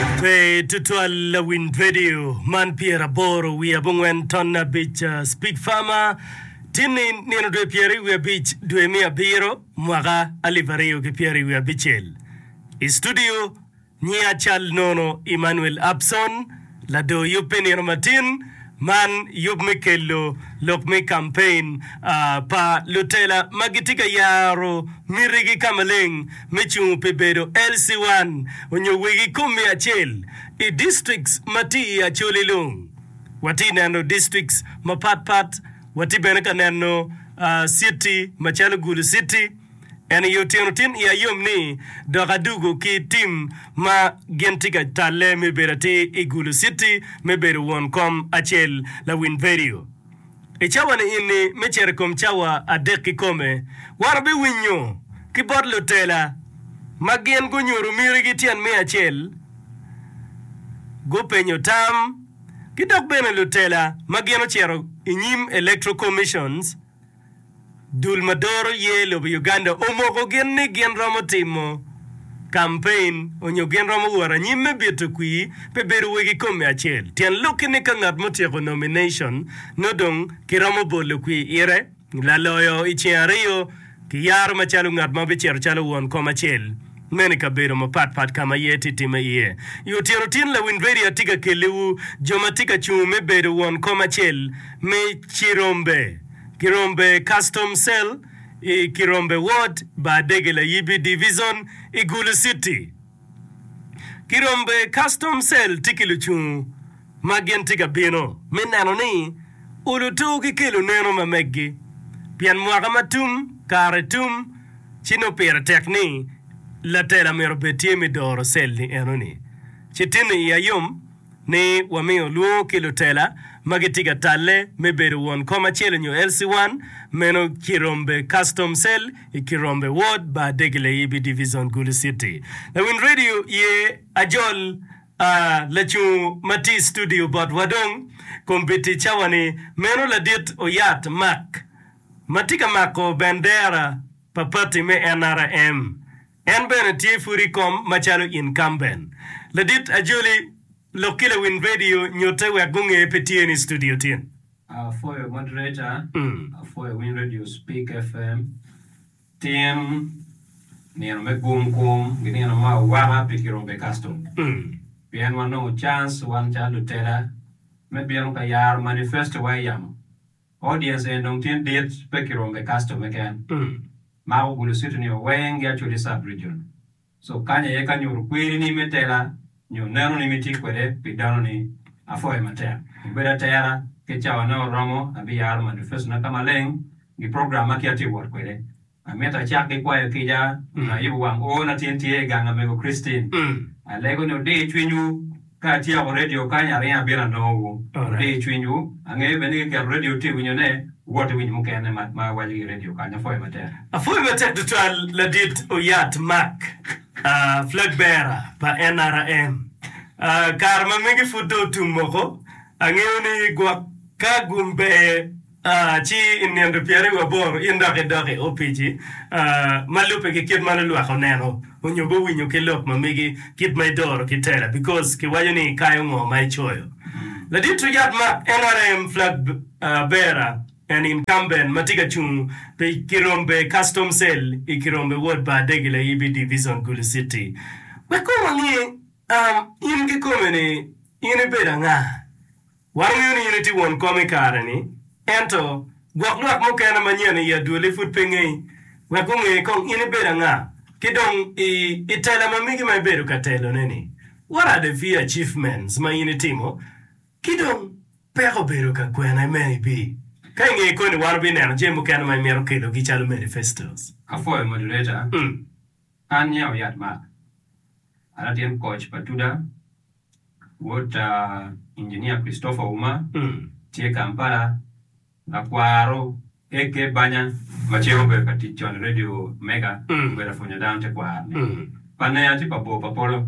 Pe tutwal lawiny redio man pyeraboro wiye abongwen ton abic Speed Farmer tinni nino dwe pyeri wiye abic dwe me abiro mwaka alip aryo ki pyeri wiye abicel. I studio nyiya cal nono Emmanuel Upson, ladoo yub me nino matin, Man yub me kelo lok me kampein pa lutela ma gitye ka yaro mitigi ka maleng me cungo pi bedo LC1 onyo wegi kom me acel i districts ma tye i Acholi Lung. Watye neno districts mapat pat, watye bene ka neno city macalo Gulu city, En i otyeno tin iya yom ni dok adugo ki tim ma gin tye ka talle me bedo atir i Gulu City me bedo won kom acel lawiny vedio. I cawa niini me cito i kom cawa adek kikome, wan wabiwinyo ki bot lutela ma gin gunyuto mitigi tyen me acel, gupenyo tam, ki dok bene lutela ma gin ocito i nyim Electoral Commissions, Dul ma doro ye lobo Uganda omoko gin ni gin romo timo kampein onyo gin romo wot anyim me bito kwir pe bedo wegi kome acel. Tyen lokki ni ka ngat mutyeko nomination nongo dong ki romo bolo kwir ite laloyo iceng ariyo ki yaro macalo ngat ma bicito calo won kom acel. Meno i kabedo mapat pat ka ma iye tye timme iye. I otyeno tin lawiny redio atye ka kelliwu jo ma tye ka cungo me bedo won kom acel me Kirombe, Kirombe Custom Cell, i Kirombe Ward, Baadege Layibi Divizon, i Gulu Citi. Kirombe Custom Cell tye ki lucungu. ma gin tye ka bino me neno ni olo tur ki kelo neno ma meggi, pien mwaka ma tum kare tum, ci nongo pire tek ni latela myero obed tye me doro cell-li enoni. Ci tinni iya yom ni wamiyo lwongo ki lutela ma gitye ka talle me bedo won kom acel nyo LC1, meno Kirombe Custom Cell i Kirombe Ward, Bar Degeleyibi Divizon, Gulu City. Lawiny Radio ye ajol. Aa, lacung ma tye i studio bot wa dong, kombiti cawa ni, meno ladit oyat Mark, ma tye ka mako bendera pa pati me NRM. En bene tye pud i kom macalo incumbent. Ladit Ajoli, lok ki lawiny radio nyutte wek gunge pe tye ni i studio tin. Apwoyo moderator, apwoyo winy radio Speak FM, Tyen, Nino me gum kum gi nino me awaka pi kirube custom pien wanongo chance wan calo lutela me bino ka yaro manifesto wa iyamo. Audience eni dong tye dit pe kirube custom keken mako gulu city ni wa weng gi Acholi sub region. So kany aye ka nyuto kwerini me tela nyo nenoni mitye kwede pi danoni. Apwoyo matek. Obedo atera ki cawone oromo abiyaro madufecona ka maleng gi program ma ki atye wot kwede. Amito acak ki kwayo kica nyo ayubo wang oo na tin tye i gang amego Christine. Alego ni odir cwinywu. Ka atyeko redio kany, aringo abino anongowu. Adiyo cwinywu. Angeyo bene ni kiketo redio tye winyo ne, wuwot iwinyo mukene ma ma awaco ki i redio kany. Apwoyo matek. Apwoyo matek tutwal ladit Oyat Mark, flag bearer pa NRM. Kare ma megi pud dong otum moko, angeyo ni gwok ka gum ber. Ci i nino pyeri wi aboro in dok idok i opici ma lubbe ki kit ma lulwak oneno onyo gowinyo ki lok ma megi kit ma idoro ki tela because ki waco ni ikayo ngo ma icoyo. Ladit Richard Mark, nrm flag bearer and incumbent ma tye ka cung pi Kirombe Custom Cell i Kirombe Ward pa Adegi Layibi Division Gulu City wek kong wange in kikome ni in ibedo anga? Wangeyo ni in itye won kom i kare-ni, ento gwok lwak mukene manyen i adwoli pud pe ngeyi, wek gunge kong in ibedo anga, ki dong i i tela ma migi ma ibedo ka telone-ni, what are the few achievements ma in itimo, ki dong peko obedo ka kwene me ibi ka inge koni wan wubineno jami mukene ma imito kelogi calo manifestos. Apwoyo moderator. An Nyao Yat Mark, an a tyen koc pa Tuda, wod ta Inginia Christopher Ouma, tye Kampala, lakwaro AK Banya ma cen obedo ka tic con i Radio Mega obedo apwonyo dano tekwaro ni pa Nea ci pa Bor pa Polo.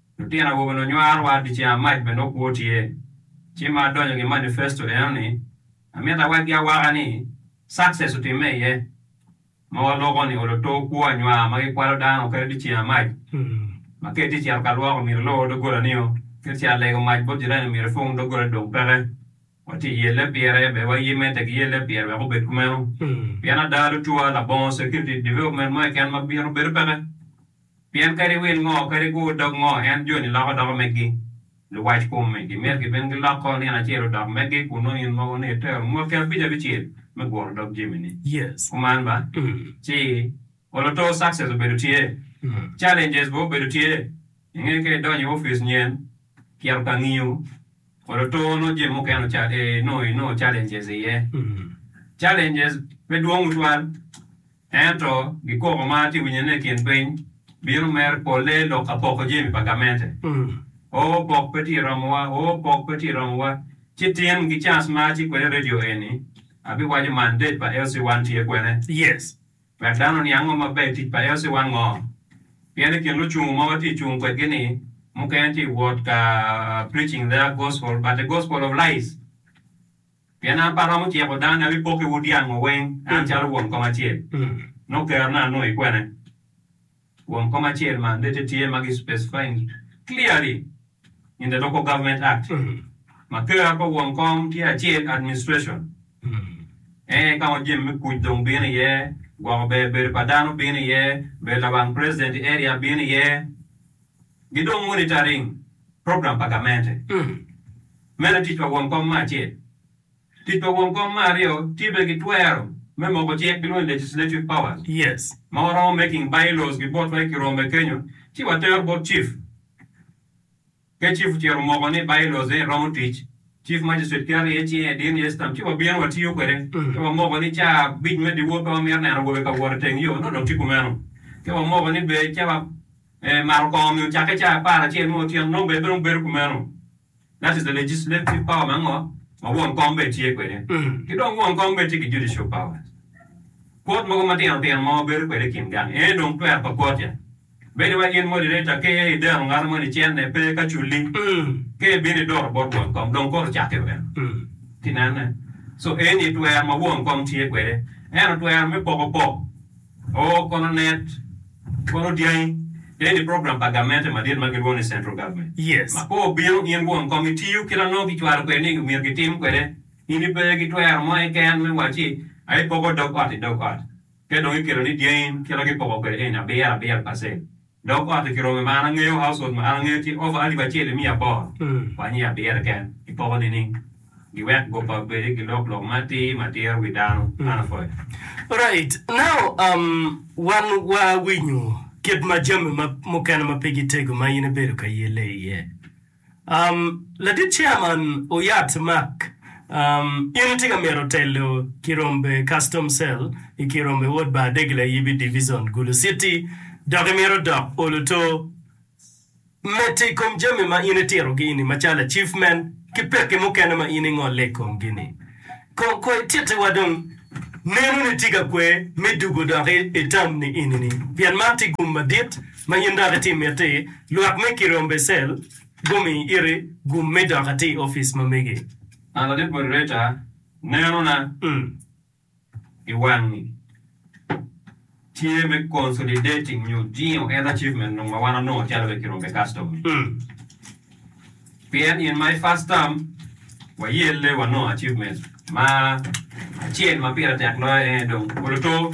Lutino awobe lunywaro wa di caa mac bene okwo tye. Ci ma adonyo ngi manifesto eno ni amito awaggi awaka ni success otimme iye. Ma waloko ni olo too kwo anywar ma gikwalo dano kadi di caa mac. Ma kadi ti cito ka lwok omyero ilor dogola nio kadi ci alego mac bot jirani omyero ipung dogola ni dong peke. Wati yelle pire be wa yime tek yelle pire wek obed kumeno. Pien ada lutwa labongo security development mo keken ma bino bedo peke. Pien kadi wil ngo, kadi gur dog ngo, en joni loko doko meggi. Luwac kome gimyero gibin giloko nino acel odok meggi, kun nongo in mogo ni itero mwaki abic abicel me guro dog jamini. Kuman ba, ci oloto Success obedo tye, Challenges bene obedo tye. I nge ka idonyo i opic nyen, kito ka ngiyo, oloto nongo jami mukene ocal, ee, nongo inongo Challenges iye. Challenges pe dwong tutwal. Ento, gikoko ma atye winyone i kin piny bino mere polle lok apoko jami pa gamente. O, pok pe tye romowa, o, pok pe tye romowa. Ci tin gi cans ma atye kwede i redio eni, abiwaco mandate pa LC1 tye kwene, yes, wek dano oniang ngo maber i tic pa LC1 ngo. Pien i kin lucung ma watye cung kwedgi ni, mukene tye wot ka preaching their gospel, but a gospel of lies. Pien an pe aromo ciko dano ni abipokiwu dyango weng an calo won kom acel. Nongo kerona anongo i kwene? Won kom acel mandate tye ma gi specifying clearly in the Local Government Act ma ker pa won kom tye acel administration ene ka ma jami me kuc dong bino iye, gwoko ber bedo pa dano bino iye, bedo lawang president i area bino iye. gi dong monitoring program pa gamente me latic pa won kom me acel. Tic pa won kom me aryo tye bene ki twero me moko cik gilwongo ni legislative powers ma waromo making by laws ki botwa i kirombe kenyo ci watero bot chief ka chief ocito omoko ni by laws eni romo tic chief magistrate keto iye cinge dino iye stamp ci wabino watiyo kwede ka wamoko ni ca abic me dyewor pe wamito neno awobe ka wot iteng yo nongo dong tye kumeno ka wamoko ni ber ca wa Me maro kong-ngi ocakke cawa apar acel me otyeno nongo bene dong bedo kumeno. That is the legislative power me ngo ma won kom bene tye kwede. Ki dong won kom bene tye ki judicial powers. Court mogo matino tino ma wabedo kwede i kin gang ene dong twer pa court ya. Bedo wai in moderator ka iye idero ngato mo ni cene pe ka culi ka ibino idoto bot won kom dong court ocakke bene. Inene? So eni twer ma won kom tye kwede. Ento twer me poko pok. O kono net, kono dyangi, ne ni program pa gamente madit ma gilwongo ni Central Government ma koo obino, in won kom itiyo ki lanongo kicwalo kwede ni omyero gitim kwede. In ipe ki twero mo keken me wacci aye ipoko dog ot i dog ot, ka dong ikelo ni dyangi kite ma gipoko kwede eni abiro abiro pacent. Dog otti ki rome ma an angeyo, household ma an angeyo tye over alip acel i miya aboro wa nyi abiro keken i poko nining? Giwek go pa bedi gilok lok matir matir wi dano. An apwoyo. Alright now um wan wa winyo kit ma jami ma mukene ma pe gitego ma in ibedo ka yelle iye. Um, Ladit Chairman Oyat Mark, um, in itye ka myero telo Kirombe Custom Cell i Kirombe Wod Bar Degla Yibi Divizon, Gulu City, dok imyero dok oluto mete i kom jami ma in itirogi ni macalo Achievement ki pekki mukene ma in ingolle i komgi ni. Kong ko itittiwa dong nenoni tye ka kwe me dugo dok itam ni eni-ni, pien man tye gum madit ma in dok iti miti, lwak me Kirion Becel gumi iri gum me dok ati i opic ma megi. An ati boti reca, nenona i wangi tye me consolidating nyo jingo en achievement nung ma wan onongo calo be Kirion Becastom ni. Pien in my first term wayelle wanongo achievement ma acel ma pire tek loyo en aye dong Oloto.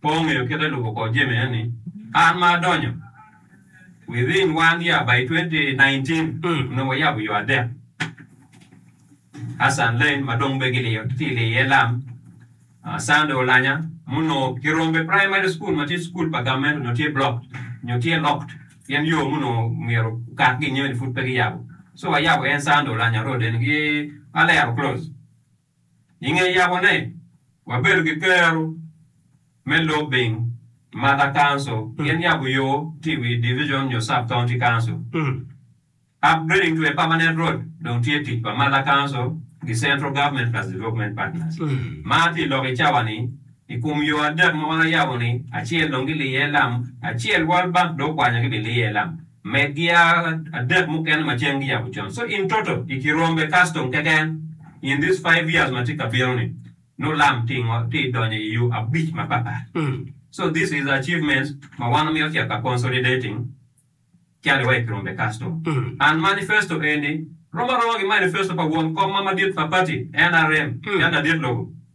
Pe ongeyo kite lubo kor jami eni. An ma adonyo within one year by twenty nineteen onongo wayabo yo adek. Hassan Lane ma dong be giliyo tye ka liyo iye lam, Sunday Olanya ma onongo kirombe primary school ma tye school pa government onongo tye blocked nyo tye locked pien yo ma onongo myero okat gin nyo ni pud pe giyabo so wayabo en Sunday Olanya road eni ki Alero close. I nge yabone, wabedo ki kero me lobing maka council gin yabo yo tye i wi division nyo sub county council. Upgrading to a permanent road dong tye tic pa maka council ki central government plus development partners. Mar tye lok i cawa ni i kom yo adek ma wan ayabo ni acel dong giliye lam acel world bank dong okwanyo gibiliye lam. me gia adek mukene ma ceng giyabo con so in toto i kirombe custom keken in this five years ma tye kabino ni nongo lam tye i donyo i yo abic mapat pat so this is achievements ma wan wamito cito ka consolidating cali wa i kirombe custom and manifesto eni rom aroma ki manifesto pa won kom ma madit pa party nrm calo ladit lobo.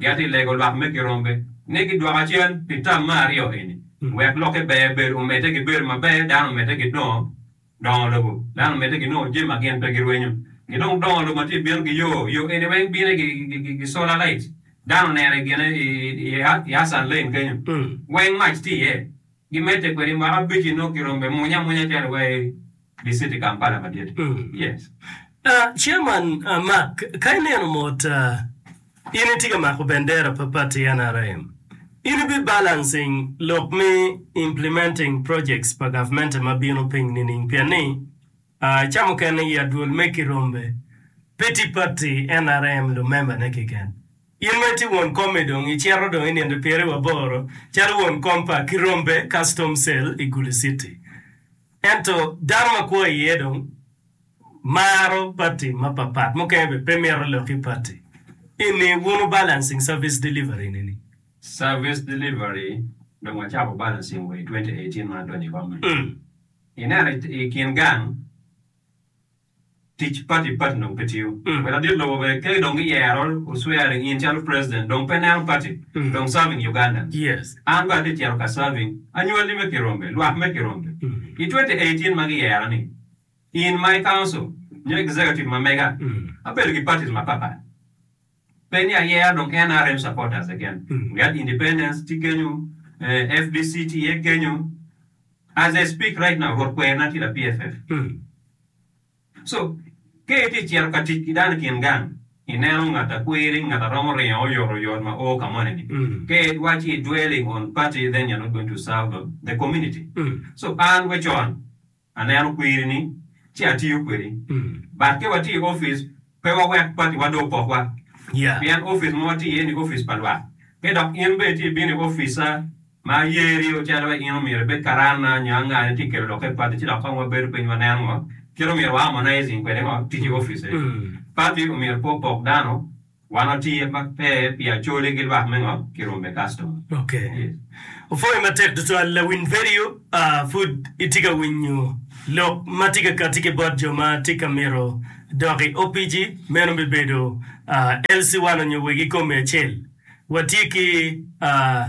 Gin atye lego lwak me girombe ni gidwoka cen pi tam me aryo eni, wek lokke ber bedo omedde gibedo maber, dano omedde gidongo dongo lobo, dano omedde ginongo jami ma gin pe girwenyo, gidong dongo lobo ma tye bino gi yo, yo eni weng bine gi solar light, dano onene gine i Hassan Lane kenyo, weng mac tye iye. Gimedde kwede mwaka abic i nongo girombe munya amunya calo wa i diciti Kampala madit yes. Chairman Mark ka ineno mot in itye ka mako bendera pa party nrm in ibi balancing lok me implementing projects pa government ma bino piny nining pien ni ca mukene i adwol me kirombe pe tye party nrm lumember ne keken In ma itye won kom-mi dong icito dong inindo i piri wa boro calo won kom pa Kirombe Custom Cell i Gulu City. Ento dano ma kwo iye dong maro pati mapapat, mukene bene pe mito lok ki pati. Eni wuno balancing service delivery ni ni. Service delivery dong wacako balancing wa i twenty eighteen ma adonyo i kom-mi. Ineno i kin gang. Tic pati pati dong pe tiyo. Wa ladit lobo bene ke dong gi yero u swearing in calo president dong pe neno pati dong serving Uganda. An bene ati cito ka serving anywali me kirombe, lwak me kirombe. I twenty eighteen ma gi yera ni in my council nyo executive ma mega abedo gi parties ma papat. Penny a yeah dong nrm supporters again ngat independence tye kenyo fdc tye iye kenyo as I speak right now rwot kwer na tye la PFF so ka itye cito ka tic ki dano ikin gang ineno ngat a kwiri ngat a romo ringo oyot oyot ma oo ka moni ni ka wa ci dwelling on party then you're not going to serve the community so an wecon Aneno kwirini ci atiyo kwedi. But ka watye i opic, pe wawek patiwa do opokwa. Pien opic ma watye iye-ni opic pa lwak. Ka dok in bene itye bino i opica ma yeri ocito wa, in omyero ibed karana nyo angane itye kelo lokke padi. Ci dok kong wabedo piny wanen ngo kit omyero wa harmonizing kwede ngo tic i opice. Pati omyero pe opok dano. Wan watye ma pe pi acholi ki lwak me ngo ki rome customer. Ok. Opwoyo matek tutwal lawiny vedio a pud itye ka winyo lok ma tye ka kati ki bot jo ma tye ka mito dok i opici meno bi bedo a LC one onyo wegi kome acel watye ki a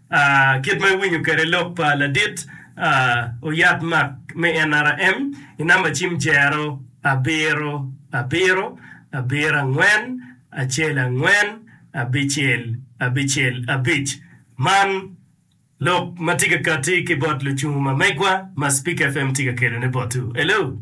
A Kit ma iwinyo kwede lok pa ladit a oyat mak me NRM i namba cim jero abiro abiro abiro angwen acel angwen abicel abicel abic. Man lok ma tye ka katti ki bot lucungu ma megwa ma Speak FM tye ka kelone botwu. Hello!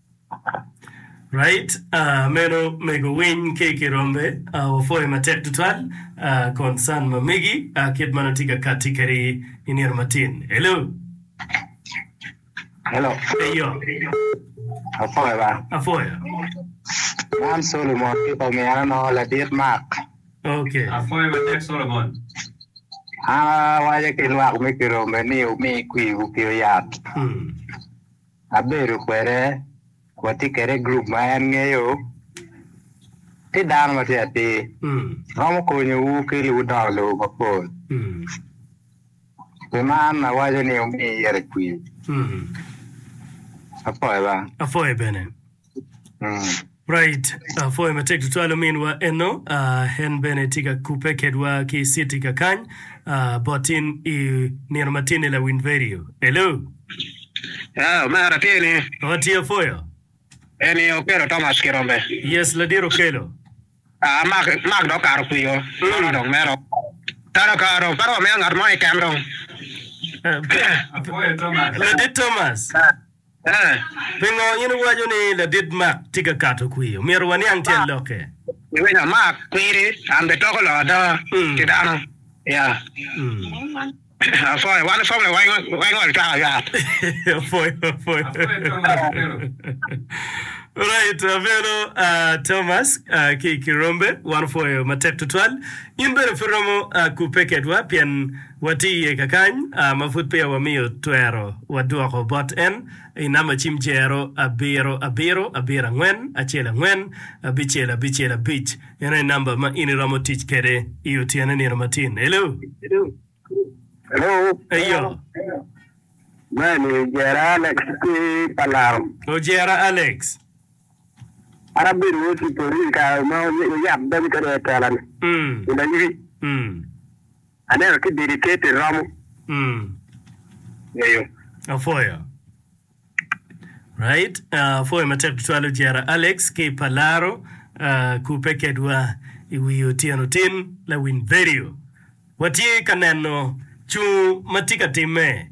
Right ah meno mego winy ki ki rombe ah wapwoyo matek tutwal ah concern ma megi ah kit ma nongo tye ka katti kadi i nino matin hello Hello, eyo apwoyo ba. apwoyo Man Solomon ki pa min ano ladit Mark. ok Apwoyo matek Solomon. An awaco ki lwak me Kirombe ni wumi kwiwu ki oyat. mm. abedo kwede watye kwede i gurup ma en ngeyo tye dano ma tye atir romo konyowu ki ludongo lobo mapol. Pi man awaco ni wumi yero cwiny. Apwoyo bene. Right. Uh, pwoyo matek tutwal ominwa eno. Uh, en bene tye ka kupe kedwa ki city ka kany. Uh, bot in i nino matin i lawin radio. Hello. Ah, mera tye ni. Oh, tye apwoyo. En i Okelo Thomas Kirombe. Yes, ladir Okelo. Ah, mak mak dok karo kwiyo. Mera dong mero. Tara ka dong para wamiyo ngat mo i kem dong. Uh, Ladit Thomas. A Pingo in iwaco ni ladit Mark tye ka kato kwir? Omyero waniang tyen lokke. Giwinyo Mark kwiri, an bene toko lok ada ki dano. Ya. Apwoyo wan ipwoyo weng ol twaka yat. Apwoyo apwoyo. Alright avelo Thomas ki i kirombe wan opwoyo matek tutwal. In bene pe iromo kubbe kedwa pien. Wati iye kakany ma pud peya wamiyo twero wadwoko bot en i namba cim jero abiro abiro abiro angwen acel angwen abicel abicel abic. Eno aye namba ma in iromo tic kwede i otyeno nino matin. Hello. Hello. Eyo. Mani Jera Alex ki pa Laram. O Jera Alex. An abedo wod Cipollin kare ma wuyab dog kwede i tela-ni. Mm. I Laywi. Mm. Aneno ki didi ker ti romo ngeyo. Apwoyo. Right, apwoyo matek tutwal ojera Alex ki pa laro kupe kedwa i wi otyeno tin lawiny vedio. Watye ka neno cung ma tye ka timme.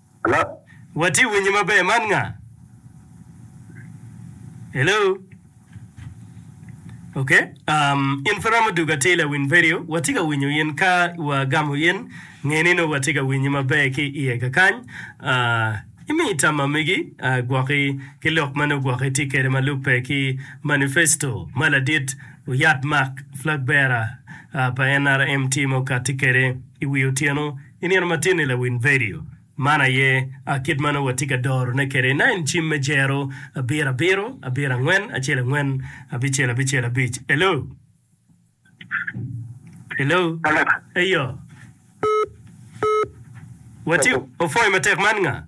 Hello? Watye winyi maber man nga? Hello? Ok um, in pe romo dugo atir lawiny vedio, watye ka winyo in ka wa gamo in, nge ni nongo watye ka winyi maber ki iye kakany. Uh, imi tam ma megi uh, gwoki ki lok ma nongo gwoki tye kede ma lubbe ki manifesto ma ladit oyat Mark Flag bearer uh, pa NRM timo kati kede iwi otyeno I nino matin-ni lawiny vedio man aye a kit ma nongo watye ka dorone kwede, Nine cim me Jero, abiro abiro, abiro angwen, acel angwen, abicel abicel, abic. Hello? Hello? Eyo. Watye, opwoyo matek man nga?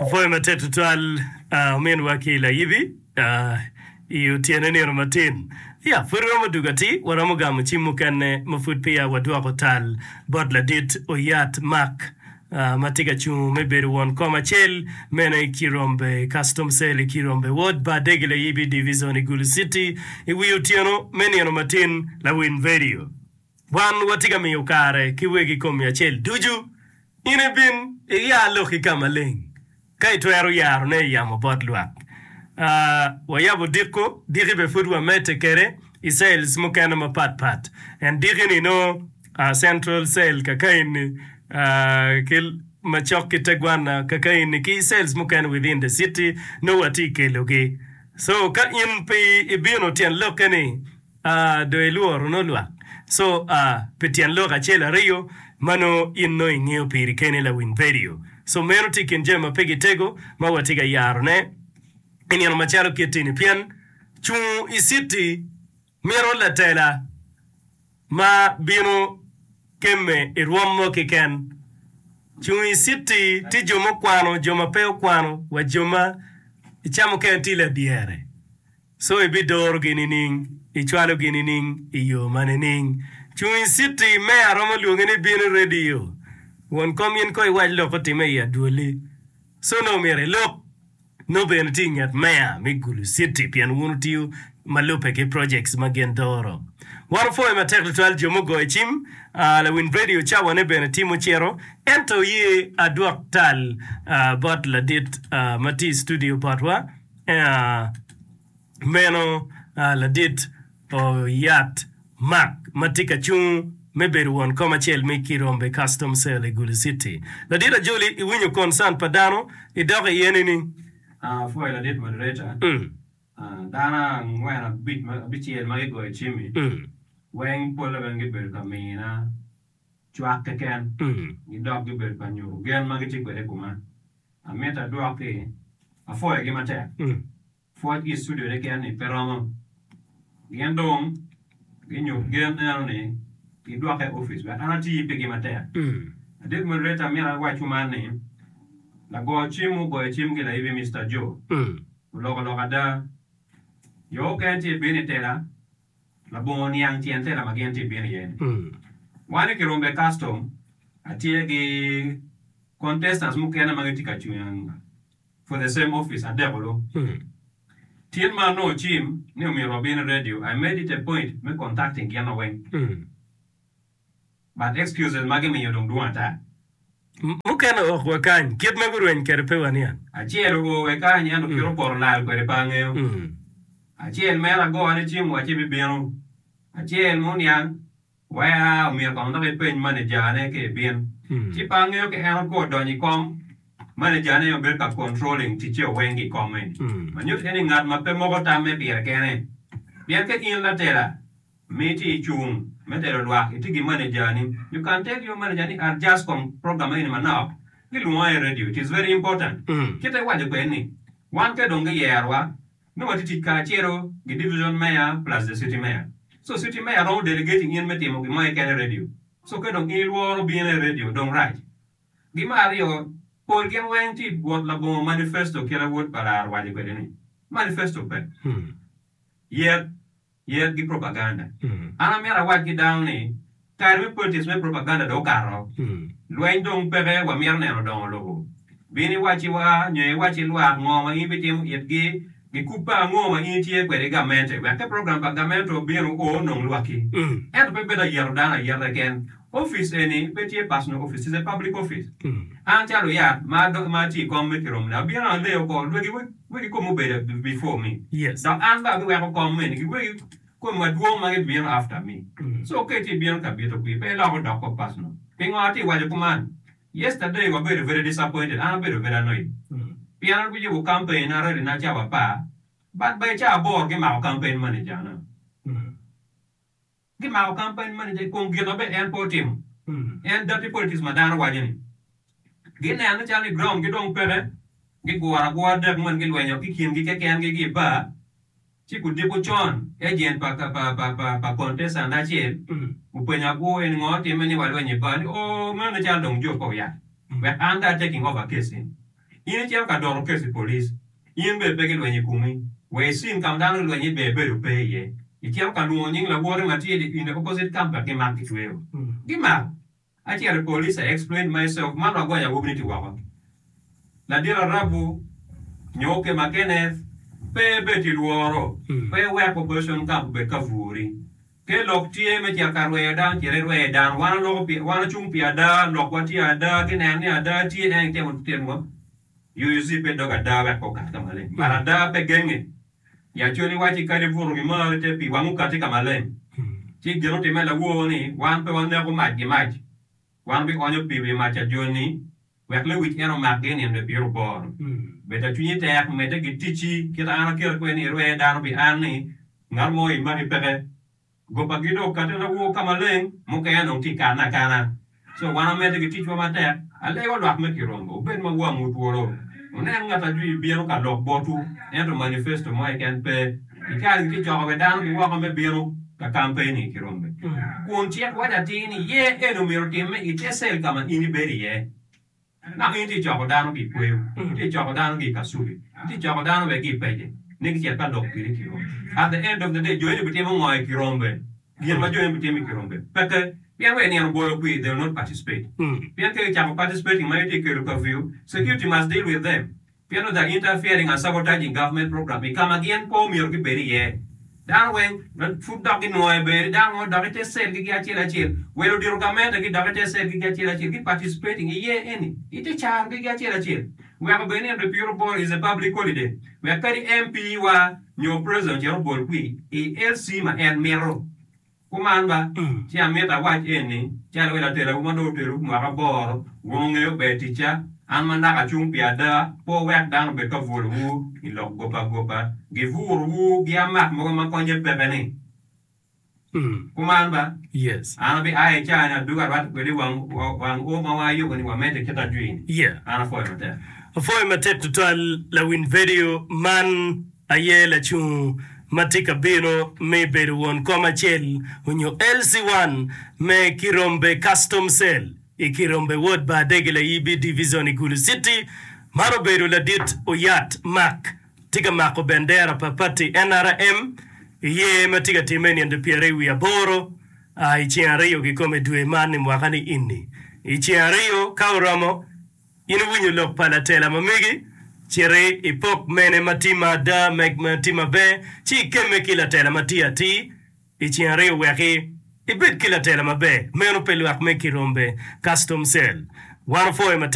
Apwoyo matek tutwal ominwa ki layibi i otyeno nino matin. Ya, pud iromo dugo atir? Waromo gamo cim mukene ma pud peya wadwoko tal bot ladit oyat Mark ma tye ka cungo me bedo won kom acel meno i Kirombe Custom Cell i Kirombe Ward, Bardegi Layibi Divizon i Gulu Citi i wi otyeno me nino matin. Lawiny Vedio. Wan watye ka miyo kare ki wegi kom i acel ducu. In ibin iya lok i ka maleng, ka itwero yarone i yamo bot lwak. A Wayabo diko, diki bene pud wamedde kwede i cells mukene mapat pat. En diki-ni nongo a central cell kakayi-ni a ki macok ki tegwanna kakayi-ni ki cells mukene within the city nongo watye kelogi. So ka in pe ibino tyen lokke-ni, Ah do ilworo nongo lwak. So ah pi tyen lok acel ariyo ma nongo in nongo ingeyo piri keni lawiny radio. So meno tye i kin jami ma pe gitego ma watye ka yaro ne i nino macalo kit ini pien cungo i city mito latela ma bino kemme i rwom mo kiken. Cungo i city tye jo mukwano jo ma pe okwano wa jo ma i ca mukene tye ladyere. Co ibidorogi nining? Icwalogi nining? I yo ma nining? Cung i citi me aromo lwonge ni bino i redio. Won kom in ko iwac lok otimme i adwoli. Co nongo myero ilok nongo bene tye i nget meya me Gulu Citi pien wun wutiyo ma lubbe ki projects ma gin doro. Wan wupwoyo matek tutwal jo mugoyo cim, lawiny redio cawane bene tye mucito, ento oye adwok tal bot ladit ma tye i studio botwa. Meno ladit oyat Mark ma tye ka cung me bedo won kom acel me Kirombe Custom Cell i Gulu Citi. Ladit Ajoli, iwinyo concern pa dano idok iye nining? Apwoyo ladit moderator, dano angwen abic abicel ma gigoyo cim-mi weng polle weng gibedo ka mina cwak keken gidok gibedo ka nyuto gen ma gitye kwede i kuma. Amito adwoki, apwoyogi matek. Pwocgi sudere keni pe romo. Gin dong ginyut gen eno ni gidwoka i opic wek an ati pigi matek. Adit moderator amito awac kuman ni lago cim mu goyo cim ki laibi Mister Joe oloko lok ada. Jo okene tye bino i tela. Labongo niang tyen tela ma gin tye bino iye ni. Wan i kiromba i custom atye gi contestants mukene ma gitye ka cwing for the same office adeko lu. Tyen ma anongo cim ni omyero wabin i radio, I made it a point me contacting gin weng. But excuses magi miyo dong dwong ata. Mukene ok wakany kit ma gurweny kwede pe waniang. Acel oo wakany ento kit opoto lal kwede pe angeyo. Acel mere agone cim wa ci bibino. Acel ma oniang wa ea omyero kong dok epeny manejane ka ebin. Ci pe angeyo ka en okwo donyo i kom, manejane aye obedo ka controlling ticce o weng ki kome. Manyut eni ngat ma pe moko tamme pire kene. Pien ka in latela, Miti icung me telo lwak iti gi manejani nyo kan tel yo maneja ni adjust kom program eni manok ki lwongo aye radio it is very important kit ma iwaco kwede ni wan ka dong giyerowa nongo watye tic kacelo gi division mayor plus the city mayor so city mayor romo delegating in me timo gin mo keken i radio so ka dong in ilworo bino i radio dong rac gi me aryo pol gin weng ti bwot labongo manifesto kit awod pa lar owaco kwede ni manifesto pe yet Yel ki propaganda. An amito awac ki dano ni kare me politics me propaganda dong okato. Lweny dong peke wamito neno dongo lobo. Bin iwacci wa nyo iwacci lwak ngo ma in bitimo itgi, gikup pa ango ma in itye kwede i gamente wek ka program pa gamente obino o nong lwaki. Ento pe bedo ayeto dano ayeta keken. Opic eni pe tye personal opic, it's a public office. An calo yat ma atye i kom me kirom ni abino aleyo ko lwagi wegi kom obedo before me dok an bene abiweko kom eni ki wegi kom madwong ma gibino after me. So ka itye bino ka bito kwi pe ilok odok kop personal. Pingo atye waco kuman? Yesterday wabedo very disappointed, an abedo very annoyed pien an guyubo campaign na rally na cawa apar but by cawa aboro gimako campaign manager na. Gimako campaign manager i kom gin ma bene en pe otimo. En dirty politics ma dano waco ni. Gineno calo ni ground gi dong peke, giguro agura dek mono gilwenyo ki kingi keken gi gi bar, ci gudiko con agent pa pa contestant acel openyo agura eni ngo timme ni walweny i bar ni ooh meno cal dong job pe oyat wek an dong a taking over case eni. In icito ka doro kec i police, in bene pe gilwenyo i kumi, wa i cin ka ma dano gilwenyo iye ber bedo pe iye, icito ka lwongo nying lawoti ma tye in the opposite camp wek gimak gicweyo. Gimak! Acito i police, I explained myself, man wagonyo awobi ni ti woko. Ladit Arabu nyo Okema Kenneth, pe ibed ki lworo, pe iwek opposition camp obed ka bwori. Ke lok tye me cito ka rweyo dano cite irweye dano. Wan aloko pi, wan acung pi ada, lokwa tye ada, ki neno ni ada tye en itemo titinowa. UUC pe dog ada wek pe okat ka maleng. But ada pe genge. Yacon iwacci kadi ibuto wi mar ite pi wang okati ka maleng. Ci gin otimme lawor ni wan pe waneko mac gi mac. Wan wi onyo pi wi mac ajoni Wek lewic en omakgi nino ipiro bor. Bed ka cwinyi tek, medde ki ticci kit an akeri kweni irwe dano pi an ni ngat mo imaki peke. Gopagi dok kati lawo ka maleng, mukene dong tye kane akana. So wan wamedde ki ticwa matek, alego lwak me kirombo, wubed ma wangwu twolo, wunen ngat ajwi bino ka lok botwu, ento manifesto mo keken pe. Icali tye coko bene dano ki woko me bino ka kampen-ni ki rombe, kun cik waco atir ni ye eni omyero otimme i te cell ka ma in ibedo iye. Naka in itye coko dano ki i kweyo, itye coko dano ki i kasubi, itye coko dano bene ki i pece ni gicit ka lok kwini ki rombe. At the end of the day, jo eni bitimo ngo i ki rombe? Gin ma jo eni bitimo i ki rombe peke, pien wek nino obolo kwi, they will not participate. Pien ka gicako participating ma itye kelo curfew, security must deal with them. Pien odagi interfering and sabotaging government program i ka ma gin pe omyero gibed iye. Dano weng pud dok ginwoyo i bedo ni dano ngo dok i te cell gi gi acel acel. Wel odito gamente gi dok i te cell gi gi acel acel ki participating iye eni i te caro gi gi acel acel. Weko bed ni Enrique Piro Boro is a public holiday wek kadi MP wa nyo President ocito obol kwi i LC ma en mito. Kuman ba, ci amito awac eni, calo elo atelawu ma dong otelowu mwaka aboro, wun wungeyo ber ticca, an ma naka acung pi ada, pe wuwek dano obed ka bwolowu i lok gope agopa, giburowu giamak mogo ma konnye peke-ni. Kuman ba, an abia i caa-ni adugo arwatte kwede i wang o ma wayubo ni wamedde kit ajwi-ni. An apwoyo matek. Apwoyo matek tutwal lawiny vedio man. Aye lacung ma tye ka bino me bedo won kom acel onyo LC1 me Kirombe Custom Cell i Kirombe Wod Bar Dege Layibi Division i Gulu City. Man obedo ladit Oyat Mark tye ka mako bendera pa pati nrm i yer ma tye ka timme i nino pyere wiye aboro a i ceng aryo kikome dwe man i mwaka ni ini. I ceng aryo ka oromo, In iwinyo lok pa latela ma megi? Citi ipok mene ma tye ma ada meg ma tye maber ci ikemme ki latela ma tye atir i ceng aryo weki ibed ki latela maber. Meno pe lwak meg ki rombe, custom cell. Wan opwoyo matek.